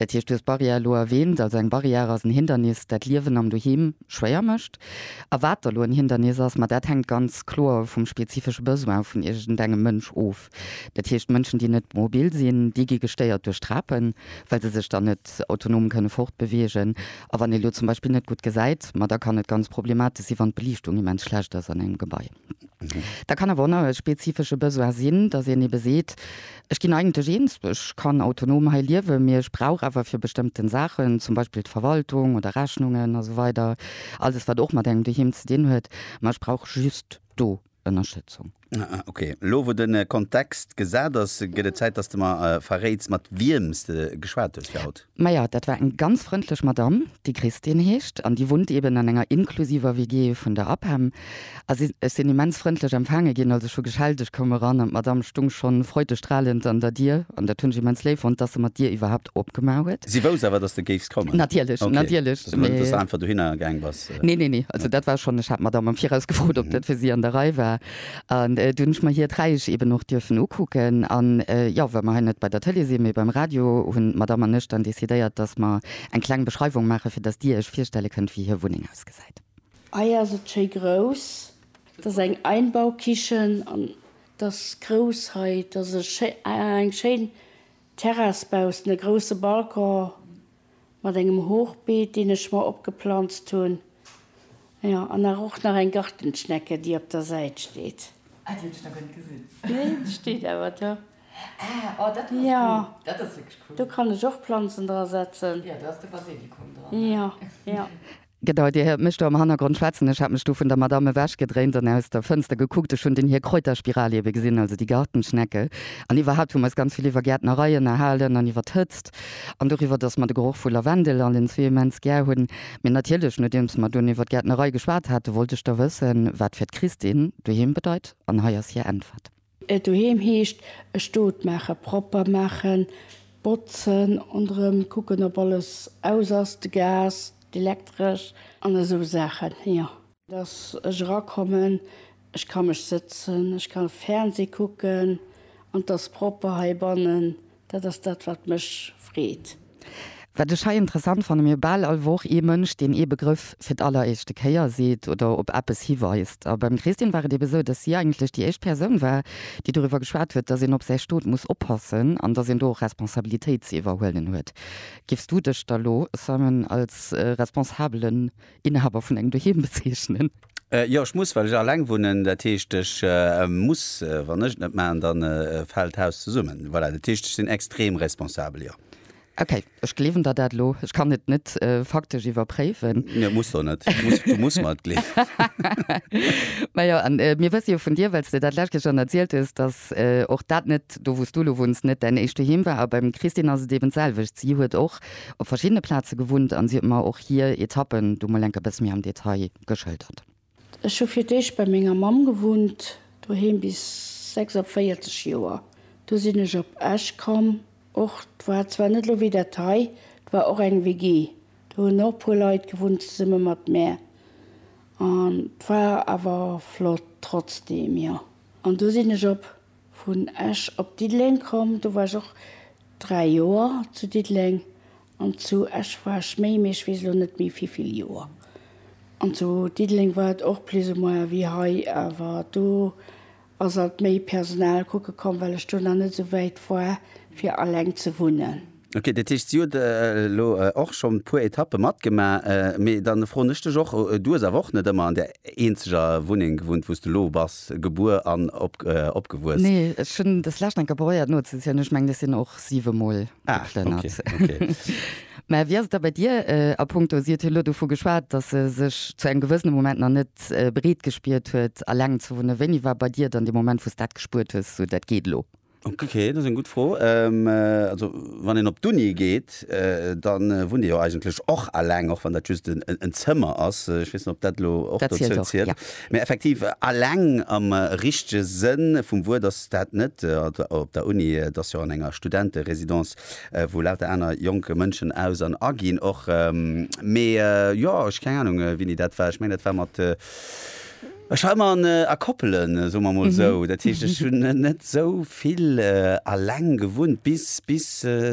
Dat heescht, du hues d'Barrière elo erwähnt, also eng Barrière ass en Hindernis, dat d'Liewen am Doheem schwéier mécht. A wat da elo en Hindernis ass, ma dat hänkt ganz kloer vum spezifesche Besoin vun iergendengem Mënsch of. Dat heescht, Mënschen, déi net mobil sinn, déi gi gestéiert duerch Trapen, well se sech dann net autonom kënne fortbewegen. A wann ee elo zum Beispill net gutt gesäit, ma da kann et ganz problematësch si wann d'Beliichtung immens schlecht ass an engem Gebai. Dat kann awer onerhört spezifische Besoin sinn, dass een ebe seet, Ech ginn eigentlech eens, ech kann autonom hei liewen, mee ech brauch awer fir bestëmmten Saachen, zum Beispill d'Verwaltung oder Rechnungen a sou weider, alles wat och mat engem Doheem ze dinn huet, ma ech brauch just do Ënnerstëtzung. Ok, elo wou de Kontext gesat ass, gëtt et Zäit, dass de mer verréits, mat wiem s de geschwat hues fir haut. Maja, dat war eng ganz frëndlech Madamm, déi Christine heescht an déi wunnt eben an enger inklusiver WG vun der APEM. A si, ech sinn immens frëndlech empfaange ginn, also ech hu geschellt, ech koum eran an d'Madamm stung schonn freudestrahlend an der Dier an dat hunn ech immens léif fonnt, dass se mer d'Dier iwwerhaupt opgemaach huet. Si wousst awer, dass de géifs kommen? Natierlech, Ok, natierlech, dass net, dass de einfach dohinner gaang bass. Nee, nee, nee, also dat war schonn, ech hat d'Madamm am Viraus gefrot, ob dat fir si an der Rei war. An du hunn ech mer hiert Räich eben och dierfen ukucken. An jo, wa mer hei net bei der Tëlee sinn, mee beim Radio, hunn d'Madame an ech dann decidéiert, dass mer eng kleng Beschreiwung maachen, fir dass dir iech virstelle kënnt, wéi hir Wunneng ausgesäit. Hei ass et schéi grouss. Et ass eng Einbaukichen an et ass grouss hei. Et ass eng schéin Terrass baussent e grousse Balcon mat engem Hochbeet deen ech mer opgeplanzt hunn, jo an nach och nach eng Gartenschnecke déi op der Säit steet. Ah déi hunn ech nach guer net gesinn. Nee déi steet awer do. Ah oh dat ass jo cool, dat ass wierklech cool. Do kann ech och Planzen dra setzen. Jo do ass de Basilikum dran. Jo jo. Gedauert, Dir héiert mech do am Hannergrond schwätzen. Ech hat mech du vun der Madame ewechgedréint an aus der Fënster gekuckt. Ech hunn den hir Kräuterspiral ebe gesinn, also déi Gartenschnecke. An iwwerhaapt hu mer eis ganz vill iwwer Gäertnerei ënnerhalen an iwwer d'Hëtzt an doriwwer, dass mer de Geroch vu Lavendel allen zwee immens gär hunn. Mee natierlech, nodeems mer dunn iwwer d'Gäertnerei geschwat haten, wollt ech da wëssen, wat fir d'Christine doheem bedeit. An hei ass hir Äntwert. Doheem heescht, e Stot maachen, propper maachen, botzen und erëm kucken, ob alles aus ass, de Gas, d'Elektresch an esou Saachen, jo. Dass ech erakommen, ech ka mech sëtzen, ech ka Fernseh kucken an 't ass propper heibannen, Dat ass dat wat mech freet. Wat ech hei interessant fannen, mir hu bal all Woch ee Mënsch deen ee Begrëff fir d'alleréischte Kéier seet oder op eppes hiweist. A beim Christine war et ebe sou, datt si eigentlech déi éischt Persoun war, déi doriwwer geschwat huet, datt een op säi Stot muss oppassen an datt een do och Responsabilitéit ze iwwerhuelen huet. Géifs du dech da lo, Simon, als Responsabelen Inhaber vun engem Doheem bezeechnen. Jo, ech muss, well ech alleng wunnen. Dat heescht, ech muss. Wann ech et net maachen, da fält d'Haus zesummen. Voilà, dat heescht, ech sinn extrem responsabel, jo. Okay, ech gleewen der dat elo. Ech kann et net faktesch iwwerpréiwen. Nee, muss der net. Du muss mer et gleewen. Mä jo, an mir wësse jo vun dir, well s de dat lescht Kéier schonn erzielt hues, dass och dat net, do wou s du elo wunns, net däin éischt Doheem war. A beim Christine ass et eben d'selwecht. Si huet och op verschiddene Plaze gewunnt an si huet mer och hier Etappen do mol enk e bësse méi am Detail geschëldert. Ech hu fir d'éischt bei menger Mamm gewunnt doheem bis 46 Joer. Du sinn ech op Esch komm. Och war zwar net elo wéi dat hei, 't war och eng WG, do hunn och puer Leit gewunnt zesumme mat mär an 't war awer flott trotzdem. Jo an du sinn ech op Vun Esch op Diddeleng komm, do war ech och 3 Joer zu Diddeleng. An zu Esch war ech méi, mee ech weess elo net méi wéi vill Joer. An zu Diddeleng war et och plus ou moins wéi hei, awer do ass alt méi Personal kucke komm, well ech do nach net esou wäit war, fir alleng ze wunnen. Ok, dat heescht si huet elo och schonn e puer Etappe matgemaach. Mee da froen ech dech och, Du hues awer och net ëmmer an där eenzeger Wunneng gewunnt, wou s du elo bass gebuer an opgewuess? Nee, ech hunn des lescht eng Kéier probéiert nozezielen, ech mengen ech sinn och siwe Mol geplënnert. Ah, ok, ok. Mä wéi ass et da bei dir a punkto, si huet elo dovu geschwat, datt se sech zu engem gewëssene Moment nach net bereet gespiert huet eleng ze wunnen. Wéini war bei dir dann dee Moment, wou s dat gespuert hues, esou dat geet elo? Okay, dat ass eng gutt Fro. Also wann een op d'Uni geet, da wunnt ee jo eigentlech och aleng, och wann dat just en Zëmmer ass. Ech weess net, ob dat elo och dozou zielt. Mee effektiv, aleng am richtege Sënn vum Wuert ass dat net op der Uni. Et ass jo an enger Studenterésidence, wou lauter aner jonk Mënschen aus an aginn och. Mee jo, ech keng Anung, wéini dat war. Ech mengen, dat war mat Ech war ëmmer an a Koppelen, soe mer emol esou. Dat heescht, ech hunn net esou vill aleng gewunnt, bis, bis,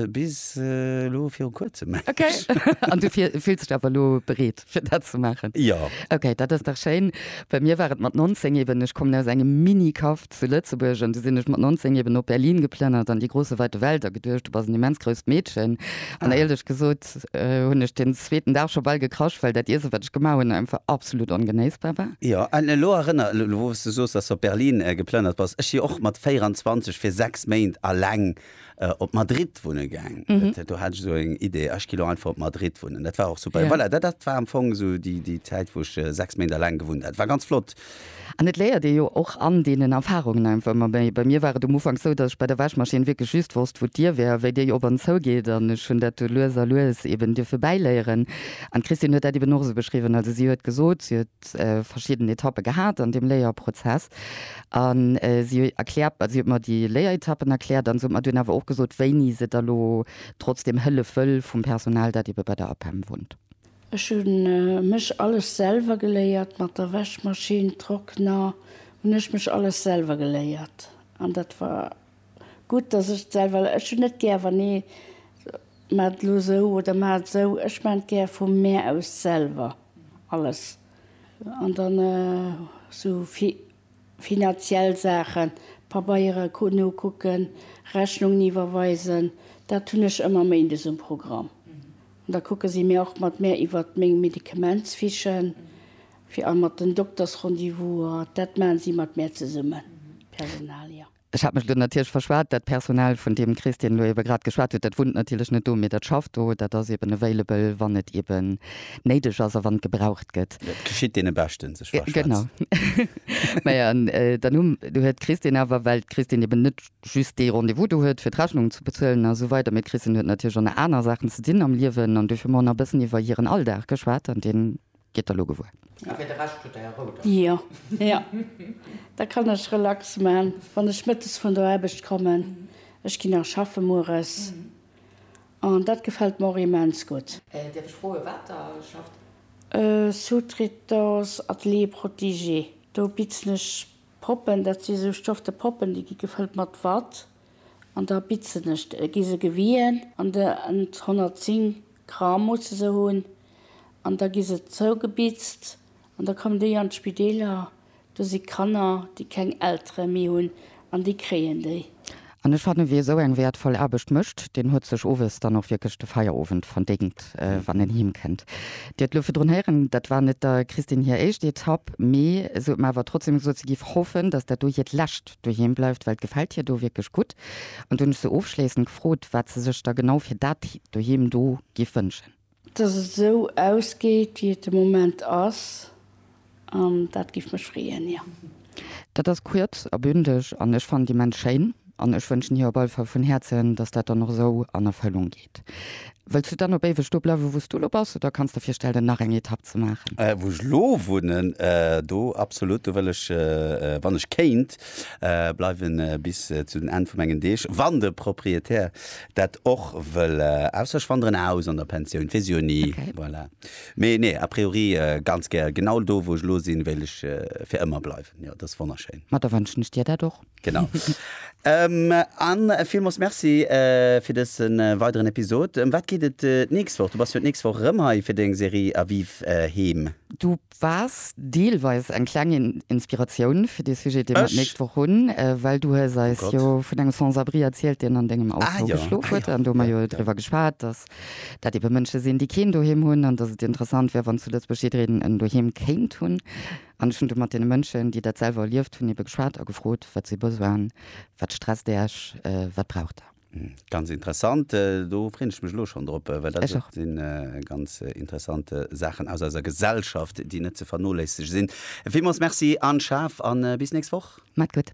bis elo viru Kuerzem mengen ech. Okay. An du fills dech awer elo bereet, fir dat ze maachen? Jo. Okay, dat ass dach schéin. Bei mir war et mat 19 eeben, ech kommen aus engem Mini-Kaff, Zu Lëtzebuerg, an du sinn ech mat 19 eben op Berlin geplënnert an déi große weite Welt a geduecht, du bass en immens grousst Meedchen. An éierlech gesot hunn ech deen zweeten Dag scho bal gekrasch, well dat Iesse, wat ech gemaach hunn, einfach absolut ongenéissbar war. Jo, an elo erënner, elo wou s du soos, dass s du op Berlin geplënnert bass, ech si och mat 24 fir 6 Méint alleng äh, op Madrid wunne gaang. Mhm. Dat, do hat ech so eng Idee, ech gi lo einfach op Madrid wunnen. Dat war och super. Ja. Ja. Voilà, dat, dat war am Fong so déi, déi Zäit, wou ech äh, sechs Méint alleng gewunnt hat. War ganz flott. An et léiert ee jo och an deenen Erfarungen einfach ëmmer méi. Bei mir war et um Ufank sou, datt ech bei der Wäschmaschinn wierklech just wosst, wou d'Dier wär, wéi déi op an zou geet. An ech hunn dat du lues a lues eben dierfe bäiléieren. An d'Christine huet dat eben och esou beschriwwen. Also si huet gesot, si huet verschidden Etappe gehat an deem Léierprozess an si erkläert, si huet mer déi Léieretappen erkläert an se huet mer dunn awer och gesot, wéini se da lo trotzdeem hëllef wëll vum Personal, dat ebe bei der APEM wunnt. Ech hu mech alles selwer geléiert, mat der Wäschmaschinn, Trockner hunn ech mech alles selwer geléiert an dat war Gutt, dass ech et selwer, ech hunn net gär, wann ee maacht elo esou oder maacht esou, ech maachen et gär vum Mär aus selwer alles. An dann esou finanziell Saachen, Pabeiere nokucken, Rechnungen iwwerweisen, dat hunn ech ëmmer méindes um Programm. An da kucke si mir och mat Mär iwwer meng Medikamentsfichen, fir a mat den Doktersrendezvousen, dat maache si mat Mär zesummen, d'Personal, jo. Ech hat mech elo natierlech verschwat. Dat Personal, vun deem Chris deen elo ebe grad geschwat huet, dat wunnt natierlech net do, mee dat schafft do. Dat ass eben available, wann et eben néideg ass a wann et gebraucht gëtt. Dat geschitt deene Beschten, sech verschwätzen. Genau. Majo, an dann hu, du huet d'Chris deen awer, well d'Chris deen eben net just dee Rendez-vous do huet, fir d'Rechnungen ze bezuelen a sou weider, mee d'Chris deen huet natierlech och nach aner Saachen ze dinn am Liewen an dofir hu mer och nach e bëssen iwwer hiren Alldag geschwat an deen. Gitt der lo gewuer. A fir de Rescht hutt der är Rou dann. Jo, jo, da kann ech relax man, wann ech mëttes vun der Aarbecht kommen. Ech ginn nach schaffe mueres an dat gefält mer och immens gutt. Dierf ech froe wat der schafft? Sous-traitance Atelier protégé. Do bitzen ech Poppen, dat si sou stofte Poppen, déi gi gefëllt mat Watt. An da bitzen ech, gi se gewien an de 110 Gramm musse se hunn, an da gi se zougebitzt an da kommen déi an d'Spideeler. Do si Kanner, déi keng Eltere méi hunn an déi kréien déi. An ech fannen, wie esou eng wäertvoll Aarbecht mécht, deen huet sech owes dann och wierklech de Feierowend verdéngt, wann en heem kënnt. Dir huet elo virdrun héieren, dat war net der Christine hir éischt Etapp, mee se huet mer awer trotzdeem gesot, se géif hoffen, datt dat do hiert lescht doheem bleift, well d'gefält hir do wierklech gutt. An du hunn ech se ofschléissend gefrot, wat se sech da genau fir dat doheem do géif wënschen. Dass et esou ausgeet, wéi et de Moment ass, an dat géif mech freeën, jo. Dat ass kuerz a bündeg an ech fannen et immens schéin an ech wënschen hir op alle Fall vun Häerzen, dass dat dann och esou an Erfëllung geet. geschéckt. Wëlls du dann op éiweg do bleiwe wou s du elo bass oder kanns de virstellen nach eng Etapp ze maachen? Wou ech elo wunnen, do absolut. Do wëll ech, wann ech kéint, bleiwe bis zu den Enn vu mengen Deeg, wann de Proprietär dat och wëll. Ausser ech wanderen aus an der Pensioun, weess ech jo ni. Voilà. Mee nee, a priori ganz gär genau do wou ech elo sinn, wéilt ech fir ëmmer bleiwen. Jo, dat ass wonnerschéin. Ma da wënschen ech dir dat och. Genau. An villmols Merci fir dëse weideren Episod. Ëm wat geet et d'nächst Woch? Du bass jo d'nächst Woch erëm hei fir deng Serie A Vivre Heem. Du waars deelweis eng kleng Inspiratioun fir dee Sujet, dee mer d'nächst Woch hunn, well du hues eis jo vun engem Sans-abri erzielt, deen an dengem Auto geschlof huet. An do hu mer jo driwwer geschwat, dass dat ebe Mënsche sinn, déi keen Doheem hunn an dass et interessant wär, wann zu Lëtzebuerg jiddereen en Doheem kéint hunn. An ech hunn du mat deene Mënschen, déi dat selwer erlieft hunn, ebe geschwat a gefrot, wat si besoin, wat stresst Iech, wat braucht Der? Ganz interessant. Do freen ech mech elo schonn drop, well dat sinn ganz interessant Saachen aus eiser Gesellschaft, déi net ze vernoléissege sinn. Villmools Merci Anne Schaaf an bis nächst Woch. Maat gutt.